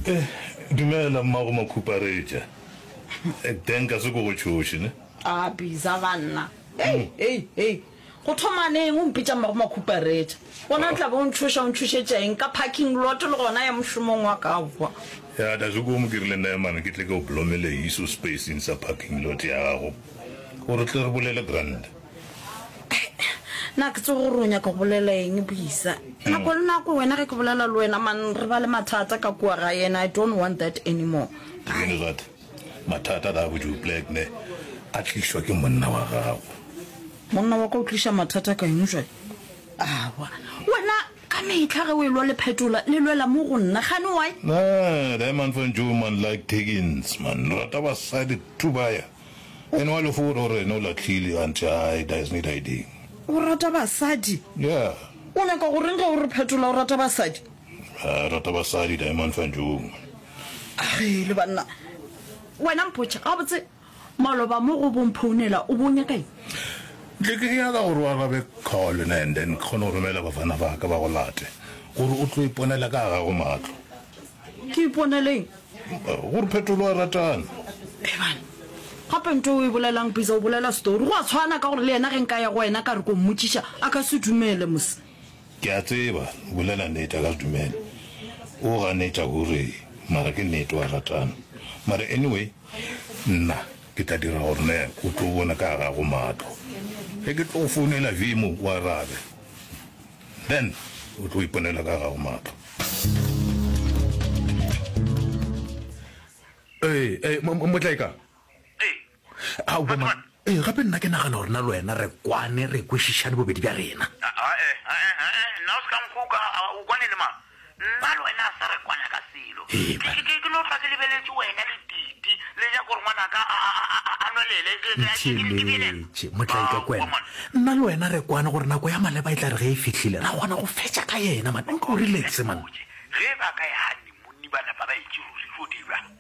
Eh, dumela mmago makhuparetša. Eh, Dan ka se ko go tšhoše, ne? A biza banna. Ei, ei, ei. Go thoma neng o mpitša mmago makhuparetša? Gona tla bo o ntšhoša o ntšhošetša eng ka parking lot le gona ya mošomong wa ka kwa. Ya da se ko mo ke rile Naeman ke tle ke o blomele iso spacing sa parking lot ya gago. Gore tle re bolele grand. na ke tsogo gore o nyaka go bolela eng boisa nako le nako wena ge ke bolela le wena man re ba le mathata ka kua ga yena i don't want that anymore really that mathata da go ju black ne a tliswa ke monna wa gago monna wa ka o tliša mathata ka eng jwale awa wena ka metlha ge o e lwa le phetola le lwela mo go nna gane wy na diamond fan jo man like takins man rata basadi tubaya Ene wa lefora o re ene o lahlile gantši a e does need ID. O rata basadi? Yeah. O nyaka go reng ge o re phetola o rata basadi? A rata basadi Diamond Fanjung. Ge le banna. Wena mpotše gabotse maloba mo go bong phounela o bo nyaka eng? Tle ke nyaka gore o arabe call ne and then ke kgone go romela bafana ba ka ba go late gore o tlo iponela ka ga gago matlo. Ke iponele eng? Gore phetolo a ratana. Eban, gape nto o e bolelang pizza o bolela story. Go a tshwana ka gore le yena ge nka ya go wena ka re ko mmotšiša a ka se dumele mos. Ke a tseba o bolela nete a ka se dumele. O ganetša gore mara ke nete wa ratana. Mara anyway nna ke tla dira gore ne o tlo bona ka gago matlo. Ge ke tlo founela Vimo o arabe. Then o tlo iponela ka gago mahlo. Ee, ee, mo- mo- Motlaeka. Ao, bo ma- Ee, gape nna ke nagana gore na le wena re kwane re kwešišane bobedi bja rena. Ae, ae, ae, nna o se ka nkuka, a, o kwane le mang? Nna le wena se re kwana ka selo. Ke no hlwa ke lebeletše wena le Titi le ja gore ngwanaka a nwelele. Itheeletše, Motlaikakwena. Nna le wena re kwane gore nako ya maleba e tla re ge e fihlile ra kgona go fetša ka yena man. O nke o relaxe man. Ge e ba ka ya hanni monni ba napa ba etše ruri, tlo dirwa.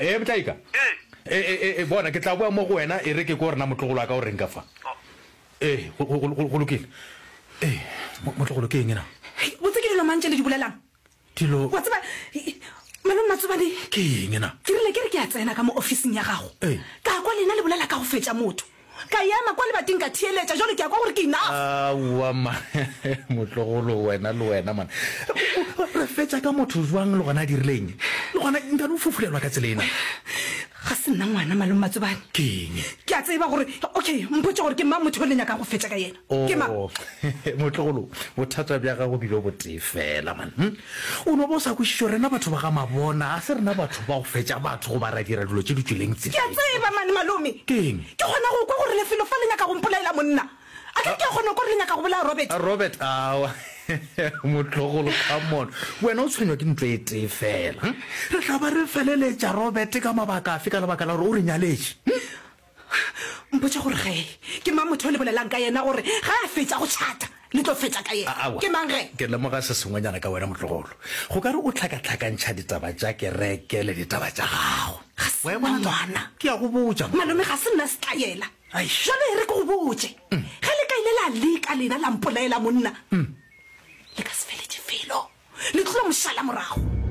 Eupša e ka, e, e, e, e, bona, ke tla boa mo go wena e re ke ko rena motlogolo wa ka o reng ka fa. Ee, go, go, go, go lokile. Ee, mo- motlogolo ke eng na? botse ke dilo mang tše le di bolelang Dilo wa tseba eh, malome matsobane ke eng na? ke rile ke re ke a tsena ka mo ofising ya gago Ee. ka kwa lena le bolela ka go fetša motho Ka ema kwa lebating ka theeletša, Jwale ke a kwa gore ke enough. Aowa mma motlogolo wena le wena man. Re fetša ka motho bjang le gona a dirile eng? Le gona ntano o fufulelwa ka tsela ena. Ga se nna ngwana Malome Matsobane. Ke eng? Ke a tseba gore okay mpotše gore ke mang motho yo le nyakang go fetša ka yena. Oh, motlogolo, bothata bja gago bilo botee fela, man. Hm? O no ba o sa kwešišo rena batho ba ga mabona, a se rena batho ba go fetša batho go ba ra dira dilo tše di tswileng tse. Ke a tseba, man, malome. Ke eng? Ke kgona go kwa gore lefelo fa le nyaka go mpolaela monna. A ke ke a kgona go kwa gore le nyaka go bolaya Robert. A Robert, awa. Motlogolo, come on. Wena o tshwenywa ke ntlo e tee fela. Hm? Re tla ba re feleletša Robert ka mabaka afe ka lebaka la gore o re nyaletše? Hm? Mpotše gore ge ke mang motho o le bolelang ka yena gore ge a fetša go tšhata le tlo fetša ka yena. Aowa. Ke mang ge? Ke lemoga se sengwenyana ka wena, motlogolo. Go ka re o hlakahlakantšha ditaba tša kereke le ditaba tša gago. Ga se nna ngwana. Ke a go botša. Malome, ga se nna setlaela. Jwale e re ke go botše. Ge le ka ile la leka lena la mpolaela monna, le ka se feletše felo. Le tlilo mošala morago.